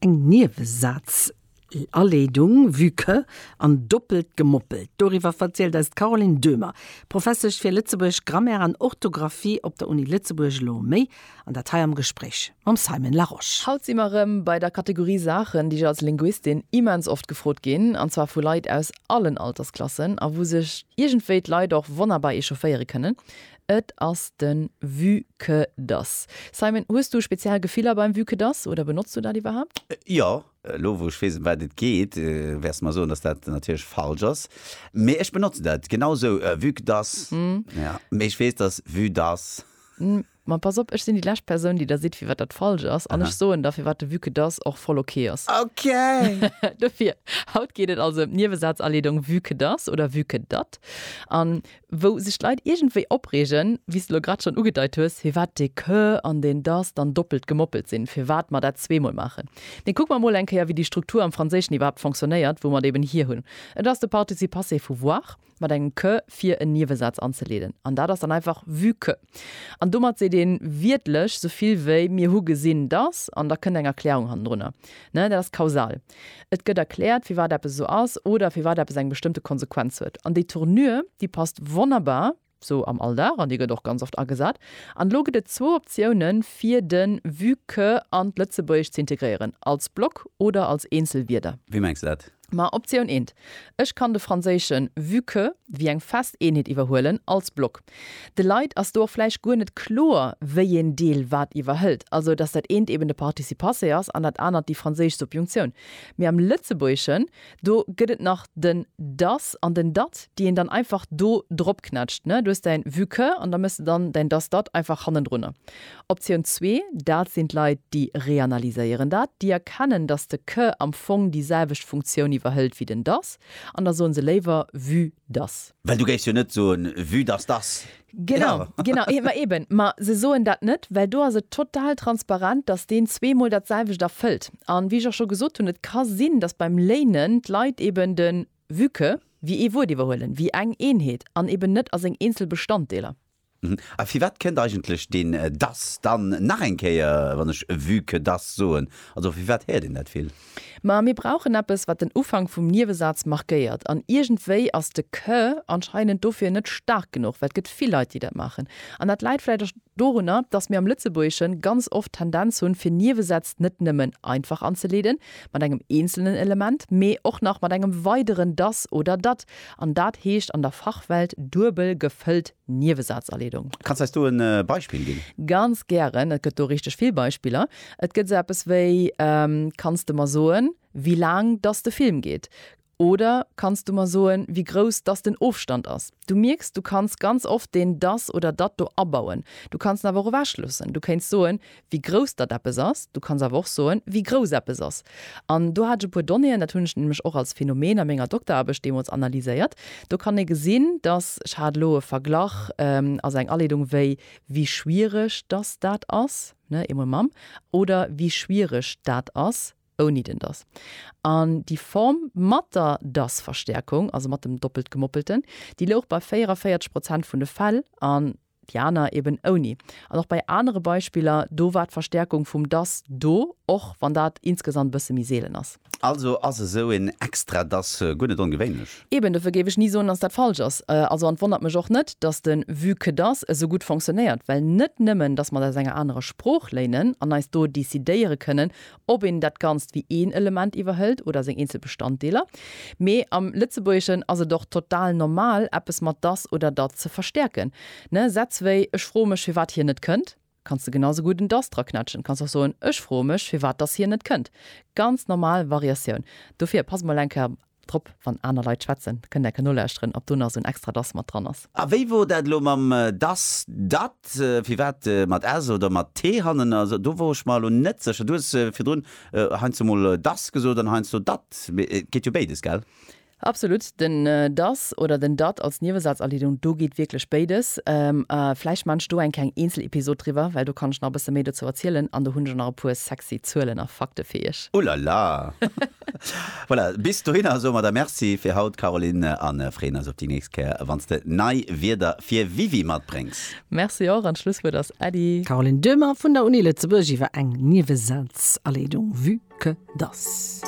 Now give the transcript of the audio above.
Eng Niewesazaleedung, vue que, an doppelt gemoppelt. Doriwwer verzielt eis d'Caroline Döhmer, Professesch fir Lëtzebuergesch, Grammaire an Orthografie op der Uni Lëtzebuerg, elo méi an dat hei am Gespréich mam Simon Larosche. Haut si mer erëm bei der Kategorie Saachen, déi ech als Linguistin immens oft gefrot ginn, an zwar vu Leit aus allen Altersklassen, a wou sech iergendwéi d'Leit och wonnerbar echaufféiere kënnen. Et ass den Vue que das. Simon, hues du speziell Gefiller beim Vue que das oder benotz du dat iwwerhaapt? Jo. Elo wou ech weess em wat et geet, wäers de mer soen dass dat natierlech falsch ass. Mee ech benotzen dat genau esou, Vue que das. Jo, mee ech weess dass Vue das. Ma pass op, ech sinn déi lescht Persoun déi der seet firwat dat falsch ass, an ech soen der firwat de Vue que das och voll ok ass. Ok! Dofir, haut geet et also em d'Niewesaazaleedong Vue que das oder Vue que dat. An wou sech d'Leit iergendwéi opreegen, wéi s de lo grad schonn ugedeit hues, firwat dee que an deen dass dann doppelt gemoppelt sinn, firwat mer dat zweemol maachen. Mee kucke mer emol eng Kéier, wéi déi Struktur am Franséischen iwwerhaapt fonctionnéiert, wou mer et eben hir hunn. Et ass de Participe passé vu voir mat engem que fir en Niewesaz anzeleeden, an dat ass dann einfach vu que. An domat seet ee wiertlech sou vill wéi, Mir hu gesinn, datt. An da kënnt eng Erklärung hannendrunner. Dat ass kausal. Et gëtt erkläert, firwat eppes esou ass oder firwat eppes eng bestëmmte Konsequenz huet. An déi Tournure, déi passt wonnerbar sou am Alldag an déi gëtt och ganz oft agesat. An elo gëtt et zwou Optiounen, fir de vue que an d'Lëtzebuergescht ze integréieren, als Block oder als eenzel Wierder. Wéi mengs de dat? Ma Optioun eent, ech kann de franséischen vue que wéi eng fest Eenheet iwwerhuelen, als Block. De Leit ass do och vläicht guer net kloer, wéi een Deel wat iwwerhëlt, also datt dat eent eben de Participe passé ass an dat anert déi franséisch Subjunctioun. Mee am Lëtzebuergeschen, do gëtt et nach den das an den dat, déi een dann einfach do dropknätscht. Du hues däin vue que an da méchs de dann däin das dat einfach hannendrunner. Optioun zwee, dat sinn d'Leit, déi reanalyséieren dat, déi erkennen, datt de que am Fong déi selwecht Funktioun iwwerhëlt wéi den dass, an da soe se léiwer vue dass. Well du géifs jo net soen, vue dass dass. Genau, genau. Ma eben, ma se soen dat net, well do ass et total transparent, datt deen zweemol dat selwecht erfëllt. A wéi ech och scho gesot hunn, et ka sinn, datt beim léinen d'Leit eben de vue que wéi ee Wuert iwwerhuelen, wéi eng Eenheet an eben net a seng eenzel Bestanddeeler. A firwat kënnt eigentlech deen dass dann nach eng Kéier, wann ech vue que dass soen? Also firwat héiert een dat vill? Ma mir brauchen eppes, wat den Ufank vum Niewesaz markéiert. An iergendwéi ass de que anscheinend dofir net staark genuch, well et gëtt vill Leit, déi dat maachen. An dat läit vläicht och dorunner, dass mir am Lëtzebuergesche ganz oft d'Tendenz hunn, fir Niewesätz net nëmmen einfach anzeleeden, mat engem eenzelnen Element, mee och nach mat engem weideren dass oder dat. An dat heescht an der Fachwelt duebel gefëllt Niewesazerledung. Kanns eis do en Beispill ginn? Ganz gären, et gëtt do richteg vill Beispiller. Et gëtt sou eppes wéi, Kanns de mer soen, wéi laang dass de Film geet? Oder, Kanns du mer soen, wéi grouss dass den Ofstand ass? Du mierks, du kanns ganz oft deen dass oder dat do abauen. Du kanns en awer och ewechloossen. Du kéints soen, wéi grouss dat eppes ass, du kanns awer och soen, wéi grouss eppes ass. An do hat ech e puer Donnéeën, dat hunn ech nämlech och als Phänomen a menger Dokteraarbecht deemools analyséiert. Do kann ee gesinn, dass, ech hat elo e Verglach als eng Aleedung, wéi wie schwierig dass dat ass, ne, eemol mam, oder wie schwierig dat ass ouni den dass. An déi Form mat der dass-Verstärkung, also mat dem Doppeltgemoppelten, déi louch bei 44 Prozent vun de Fäll an, déi aner eben ouni. An och bei anere Beispiller, do war d'Verstärkung vum dass do, och wann dat insgesamt e bësse méi seelen ass. Also ass esou een extra dass guer net ongewéinlech? Eben, dofir géif ech ni soen, dass dat falsch ass. Also, an et wonnert mech och net, dass de vue que dass esou gutt fonctionnéiert, well net nëmmen, dass mer et aus enger anerer Sprooch léinen an eis do decidéiere kënnen, ob een dat Ganzt wéi een Element iwwerhëlt oder seng eenzel Bestanddeeler. Mee am Lëtzebuergeschen ass et och total normal, eppes mat dass oder dat ze verstäerken. Ne, Sätz wéi Ech froe mech, firwat hien net kënnt, kanns de genau esou gutt en dass draquetschen. Kanns och soen, Ech froe mech, firwat dass hien net kënnt. Ganz normal Variatioun. Dofir pass mol eng Kéier Drop, wann aner Leit schwätzen, kënnt enke nolauschteren, ob do nach esou en extra das mat dran ass. A wéi wor dat elo mam das, dat, firwat mat s oder mat t hannen ass? Do wor ech mer elo net sécher. Du hues virdrun heiansdo mol das gesot an heiansdo dat, mee et geet jo béides, gell? Absolut, den das oder den dat als Niewesazerliedung, do geet wierklech béides. A vläicht maan ech do eng kleng Eenzelepisod driwwer, well do kann ech nach e bësse méi dozou erzielen an do hunn ech och nach e puer sexy Zuelen a Fakte fir iech. Ulala! Voilà, bis dohinner soe mer der Merci fir haut, Caroline, a freeën eis op déi nächst Kéier, wann s de nei Wierder fir Wiwi matbréngs. Merci och, an d'Schlusswuert ass Äddi. Caroline Döhmer vun der Uni Lëtzebuerg iwwer eng Nieweselsalleedung, vue que dass.